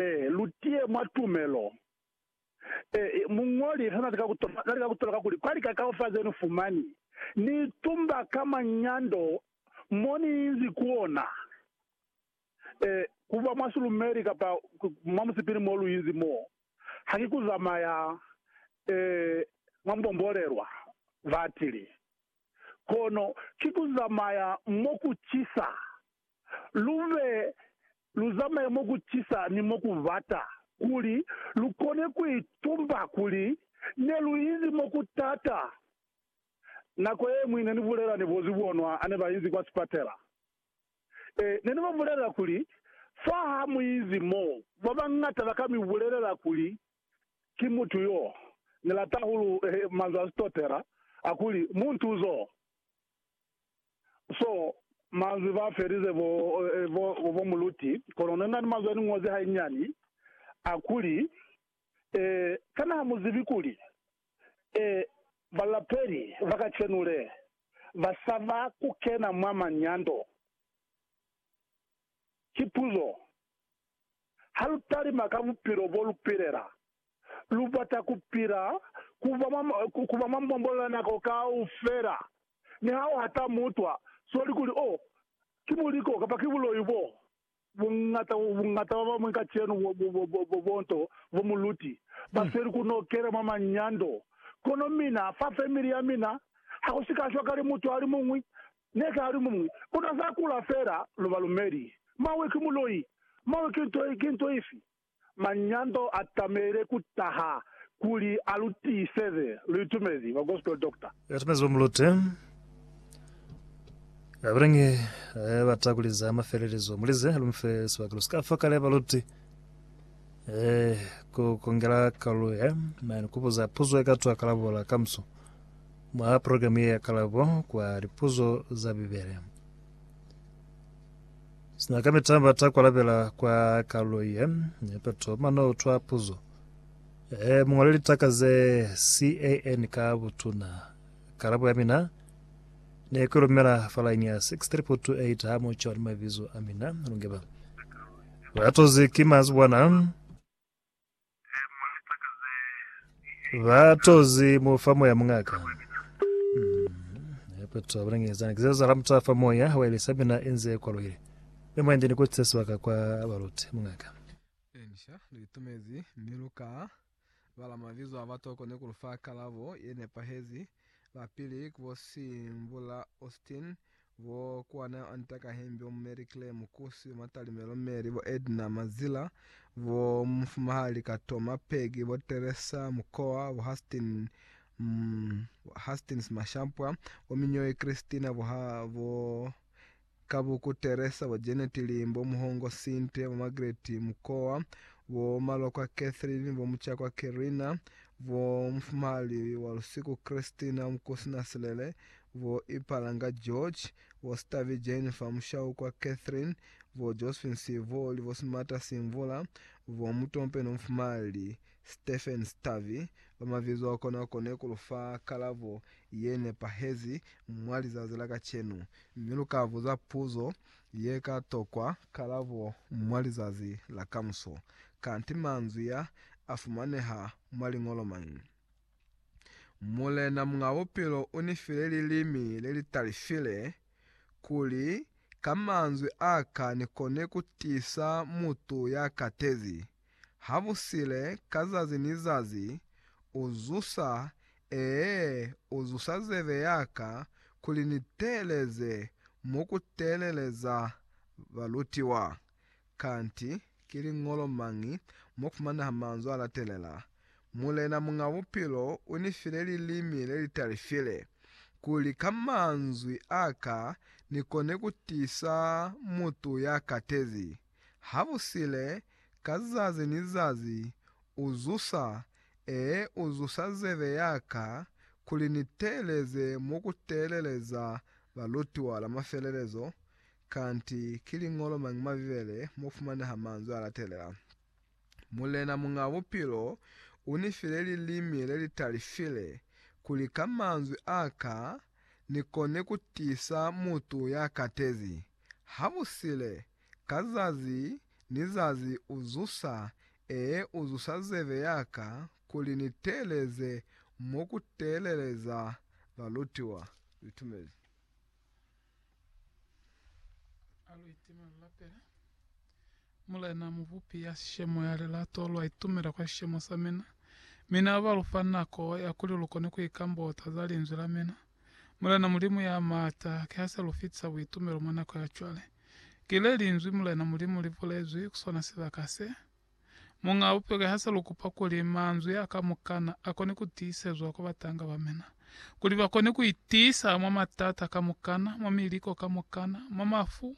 Ee, lu tiye mwa tumelo. Ee, muñoli hana lika kutola, na lika kutola kakuli kwa lika kaufela zeni fumani, Ni tumba ka manyando mo ni inzi ku ona. Ee, kuba mwa silumeli kapa mwa musipili mo lu inzi mo, ha ki ku zamaya, ee, mwa mbombolelwa, batili. Kono ki ku zamaya mo ku cisa, lu be Lu zamaye mo ku cisa ni mo ku bata, kuli lu kone ku itumba kuli ne lu inzi mo ku t'ata. Nako ye ñwi ne ni bulela ni bo zibonwa ha ne ba inzi kwa sipatela. Ee, ne ni ba bulelela kuli, Fa ha mu inzi mo, ba bañata ba ka mi bulelela kuli ki mutu yo ni lata hahulu, manzwi a Sitotela a kuli, Muntuzo. So, manzwi ba felize bo, bo, bo muluti, kono ne na ni manzwi a ni ñozi hanyinyani, a kuli, Eh, kana ha mu zibi kuli, eh, balapeli ba kacenu le, ba saba ku kena mwa manyando? Ki puzo. Ha lu talima ka bupilo bo lu pilela, lu bata ku pila ku ba mwa, ku ba mwa mbombolela nako kaufela, niha u hata mutwa swali kuli, Oh, ki buliko kapa ki buloi bo buñata, buñata ba bamwi kacenu bo, bo, bo, bo, bo, bo nto bo muluti ba feli ku nokela mwa manyando. Kono mina, fa family ya mina, ha ku si ka shwa kale mutwa ali muñwi, ne ka ali muñwi. Kono za kula fela, lu balumeli. Mawe ki muloi. Mawe ki nto, ki nto ifi? Manyando a tamehile ku taha kuli a lu tiiseze. Lu itumezi ba Gospel Doctor? Lu itumezi ba Mulute? Kabilangi e bata kuli za mafelelezo mu lize lu mufe sibaka lu si ka fa kale baluti e ku kongela kalulo ya nani ku buza puzo ye ka twa kalabola ka muso mwa programu ye ya kalabo kwa lipuzo za Bibele. Sina ka mitamba ta kwalabela kwa kalulo ye ne peto, mano utwa puzo. E muñole litaka ze CAN ka butuna. Kalabo ya mina ne ku lumela fa line ya 63.8 ha mu cwa ni mabizo a mina. Lungeba. Ba tozi ki mazuwana. Ba tozi mu fa moya mungaka. Hape to abona ngezana kizo za ramta fa moya wa ile sabina enze kwa loile. Ni mwende ni kutse swaka kwa baluti mungaka. Elisha luitumezi mi luka bala mabizo a batoko ni kulufa kalabo yenepahezi. Lapili kubo Simbula Austin Bo Kuana Anta Kahembi, bo Mary Claire Mukusi, bo Matalimelo Mary, bo Edna Mazila, bo Mufumahali Katoma Peggy, bo Teresa Mukowa, bo Hastin mm, Hastings Mashampwa, bo Minyoyi Christina, bo, ha, bo Kabuku Teresa, bo Janet Limbo, bo Muhongo Sinte, bo Margaret Mukowa, bo Malokwa Catherine, bo Muchakwa Kerina, bo Mufumahali Walusiku Christina, Mukusi Nasilele, bo Ipalanga George, bo Sitavi Jennifer, Mushaukwa Catherine, bo Josephine Sivoli, bo Simata Simvula, bo Mutompe no Mufumali Stephen Sitavi, ba mabizo a kona kone ku lu fa kalabo ye nepahezi mwa lizazi la kacenu, mi lu ka buza puzo ye ka tokwa kalabo mwa lizazi la kamuso. Kanti manzwi a, a fumaneha mwa liñolo mañi? Mulena Muñ'a Bupilo u ni file lilimi le li talifile, kuli ka manzwi a ka ni kone ku tiisa mutu ya katezi. Habusile, ka zazi ni zazi, u zusa, ee, u zusa zebe ya ka, kuli ni teeleze mo ku teeleleza balutiwa. Kanti, ki liñolo mañi mo fumanaha manzwi a latelela, Mulena Muñ'a Bupilo u ni file lilimi le li talifile, kuli ka manzwi a ka ni kone ku tiisa mutu ya katezi? Habusile, ka zazi ni zazi, u zusa, ee, u zusa zebe ya ka, kuli ni teeleze mo ku teeleleza balutiwa la mafelelezo, Kanti ki liñolo mañi mwa Bibele mo fumaneha manzwi a latelela, Mulena Muñ'a Bupilo u ni file lilimi le li talifile, kuli ka manzwi a ka ni kone ku tiisa mutu ya katezi? Habusile, ka zazi ni zazi u zusa, ee, u zusa zebe ya ka, kuli ni teeleze mo ku teeleleza balutiwa. Litumezi. Alu itima lu lapela. Mulena Mubupi ya sishemo ya lilato, lwa itumela kwa sishemo sa mina. Mi Na ba lufa nako ya kuli lu kone ku ikambota za Linzwi la mina. Mulena Mulimu ya maata, kiha se lu fitisa buitumelo mwa nako ya cwale. Ki le Linzwi, Mulena Mulimu, li bulezwi ku sona sibaka se. Muñaa bupeke ha sa lu kupa kuli manzwi a kamukana a kone ku tiisezwa kwa batanga ba mina, kuli ba kone ku itiisa mwa matata kamukana, mwa miliko kamukana, mwa mafu,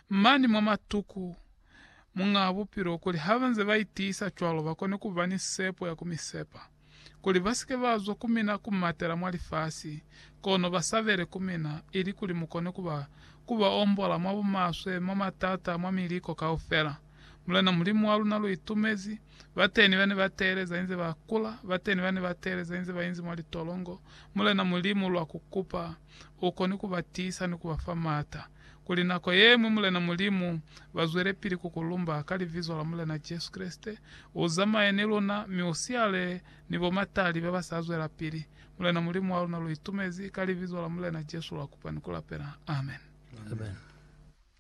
mani mwa matuku, Muñaa Bupilo, kuli ha ba nze ba itiisa cwalo ba kone ku ba ni sepo ya ku mi sepa. kuli basike bazwa ku mina kumatela mwa lifasi, kono basabele ku mina, ilikuli mukone kuba kuba ombola mwa bumaswe, mwa matata, mwa miliko kaufela. Mulena Mulimu wa luna lu itumezi, bateni bane ba teeleza inze ba kula, bateni bane ba teeleza inze ba inzi mwa litolongo, Mulena Mulimu lwa ku kupa ukone kuba tiisa ni kuba fa mata. kuli nako yeñwi Mulena Mulimu bazwelepili kukulumba ka libizo la Mulena Jesu Kreste, uzamaye ni luna, mi usiale ni bomatali babasa zwelapili. Mulena Mulimu wa luna luitumezi, ka libizo la Mulena Jesu luakupa ni kulapela. Amen. Amen.